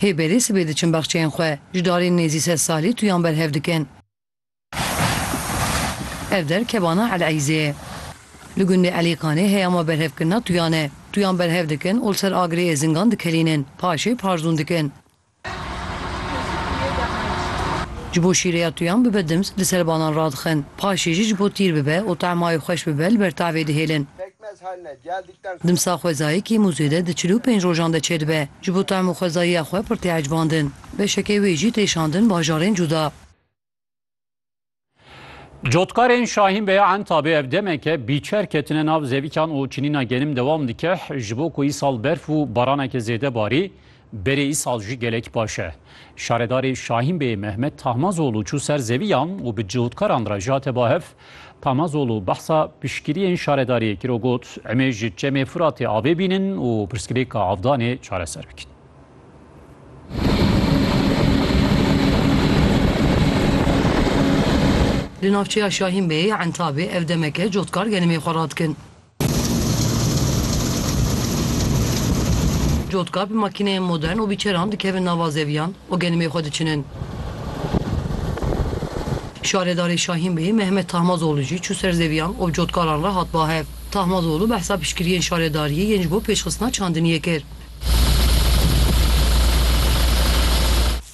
Hê berê sibê diçin baxçeyên xwe, ji darên nêzî sed salî tuyan berhev dikin. Ev der kebana Eleyzê ye. Li gundê Elîkanê heya me berhevkirina tuyan e. Tuyan berhev dikin û li ser agirê Êzingan dikelînin. Paşê parzûn dikin. Ji bo şîreya tuyan bibe dimz li ser banan radixin. Paşê jî ji bo tîr bibe û temayê xweş bibe li ber tavê dihêlin. Dimsa xwezayê kêm û zêde di çil û pênc rojan de çêdibe. Ji bo taym û xwezayiya xwe pir tê ecbandin. Beşekê wê jî tê şandin bajarên cuda. Cotkarên Şahîn Bey Entabê ev demeke bîçer ketine nav zevîkan û çinîna genim dewam dike. Ji bo ku îsal berf û baraneke zêde barî, Berê îsal jî gelek baş e. Şaredarê Şahîn Beyê Mehmet Tahmazoglû çû ser zeviyan û bi cihûdkaran re jate ba hev. Tahmazoglû behsa piştgiriyên şaredariyê kir û got, Emê ji Çemê Firatê avê bînin û pirsgirêka avdanê çareser bikin. Li navçeya Şahîn Beyê Entabê ev demeke cihûdkar gelemê xwe radikin. Cotka bi makîneyên modern û bi çeran dikevin nava zeviyan û genimê xwe diçinin. Şaredarê Şahîn Bey Mehmet Tahmazoglû jî çû ser zeviyan û bi cotkaran re hat bahev. Tahmazoglû behsa piştgiriyên şaredariyê yên ji bo pêşxistina çandiniyê kir.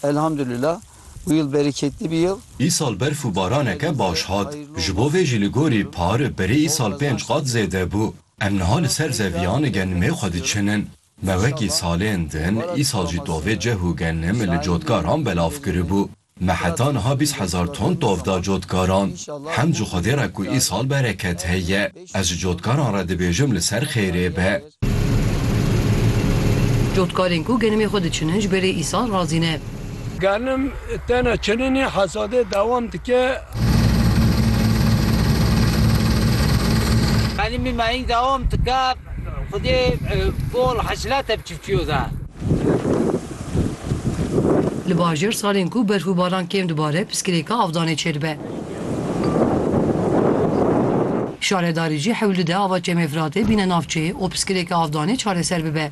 Elhamdulîla û yil bereketli bî yil. Îsal berf û baraneke baş hat. Ji bo vê jî li gorî par berê îsal pênc qat zêde bû. Em niha li ser zeviyan genimê xwe diçinin. Me wekî salên din îsal jî tovê cih û genim li cotkaran belav kiribû. Me heta niha bîst hezar ton tov da cotkaran. Hemd ji Xwedê re ku îsal bereket heye. Ez ji cotkaran re dibêjim li ser xêrê be. Cotkarên ku genimê xwe diçinin ji berê îsal razî ne. Genim tena çininê hesadê dewam dike. Genimê mehîng dewam dike. Xwedê bol hesilate bi çifçiyo de. Li bajêr salên ku berf û baran kêm dibare piskirêka avdanê çêdibe. Şaredarî jî hewl dide ava Çemê Firatê bîne navçeyê û piskilêka avdanê çareser bibe.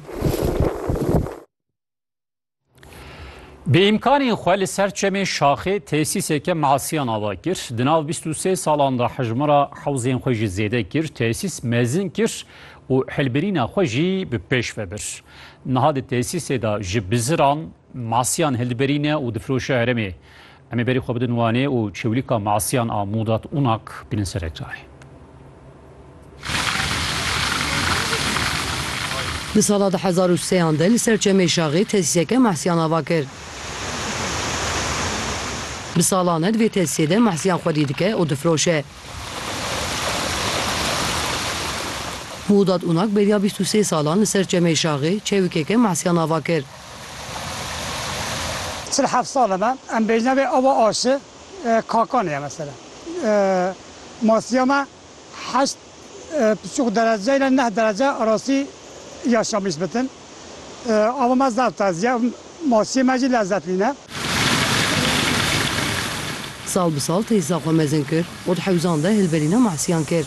Bi îmkanên xwe li ser Çemê Şaxê tesîseke masiyan ava kir. Di nav bîst û sê salan de hejmara hewzên xwe jî zêde kir, tesîs mezin kir û hilbirîna xwe jî bi pêş ve bir. Niha di tesîsê de ji biziran masiyan hildiberîne û difiroşe herêmê. Em ê berî xwe bidin Wanê û çewlîka Masiyan a Mudat Unak bînin ser ek carê. Di sala du hezar û sê an de li ser Çemê Şaxê tesîseke Masiyan ava kir. Bi salan e di vê tesîsê de Masiyan xwedî dike û difiroşe. Mudat Unak beriya bîst û sê salan li ser Çemê Şaxê çewikeke Masiyan ava kir. Çil heft sal e me, em bêjine vê ava aşi Kakanê ye mesela. Masiya me heşt piçûk derece île neh derece erasî yaşamış bitin. Ava me zaf tez ye û masiyê me jî lezet nîne. Sal bi sal teysa xwe mezin kir û di hewzan de hilberîna masiyan kir.